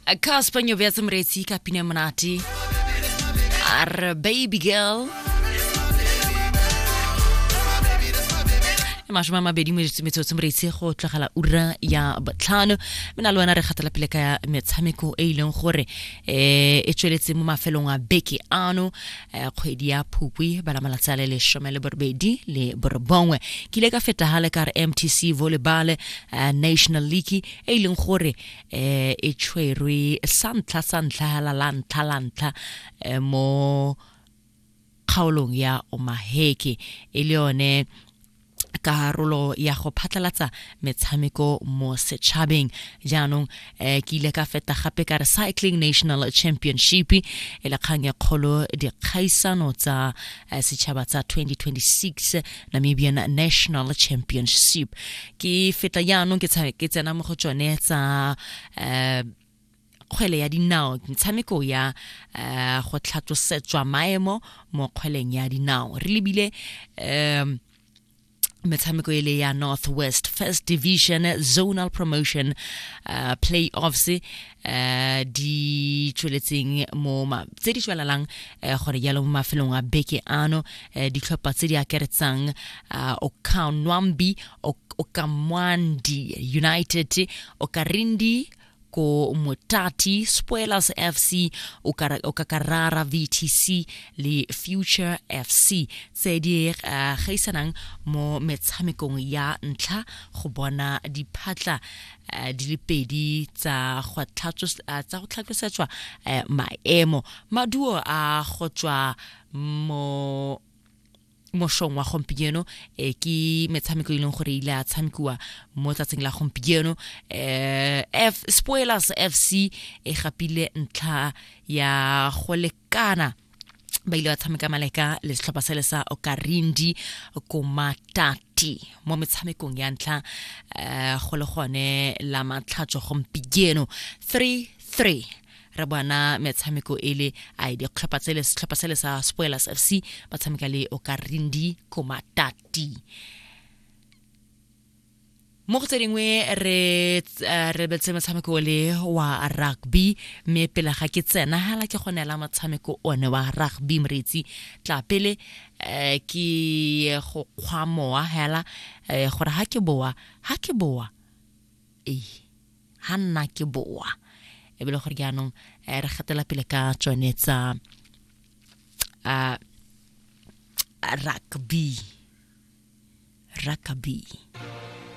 a ka sepanyo bea tse moreetsi ka pine monate a re baby girl e masome a mabedi mo ditsumetso tse moreitse go tlogela ura ya botlhano mme na le wena re kgatela pele ka metshameko e e leng gore um e tsweletse mo mafelong a beke ano Eh, kgwedi ya phukwi bana malatsi a le lesome le borobedi le borobongwe ke ile ka fetagale ka re mtc volleyball eh, national league e e leng gore um e tshwerwe sa ntlha sa ntlha hela la ntlha la ntlha mo kgaolong ya omaheke e le yone karolo ya go phatlalatsa metshameko mo setšhabeng jaanong eh, ke ile ka feta gape ka recycling national championship e le kgang e kgolo dikgaisano tsa eh, setšhaba tsa 2026 namibian national championship ke feta jaanong ke tsena mo go tsone tsa eh, kgwele ya dinao metshameko ya um go tlhatlosetswa maemo mo kgweleng ya dinao re lebile um metshameko e le ya north west first division zonal promotion uh, playoffs uh, di tsweletseng mo ma- tse di tswelelang uh, gore jalo mo mafelong a beke ano uh, ditlhopha tse di akaretsang uh, okanwambi ok okamwandi united okarindi ko Motati, Spoilers FC, Okakarara VTC le Future FC tse di eh, gaisanang mo metshamekong ya ntlha go bona diphatla eh, di le pedi tsa go eh, tlhatlosetswa maemo maduo a go tswa mo mošong wa gompieno eh, ke metshameko e leng gore ile a tshamekiwa mo tsatsing la gompieno eh, F, spoilers fc e gapile ntlha ya go lekana ba ile ba tshameka maleka le setlhopha sele sa okarindi komatati mo metshamekong ya ntlha um go le gone la matlhatso gompieno 3 3 re bona metshameko e le a ditlhopha tse le setlhopha se le sa spoilers f c ba tshameka le okarindi komatati mo go tse dingwe re eh, re betse motshameko o le wa rugby mme pele ga ke tsena hala ke go neela motshameko one wa rugby moreetsi tla pele um ke go kgwa mowa hela um gore ga ke boa ga ke boa ei ha nna ke boa e be le gore jaanong eh, re gatela pele ka tsone tsa uh, rugby rugby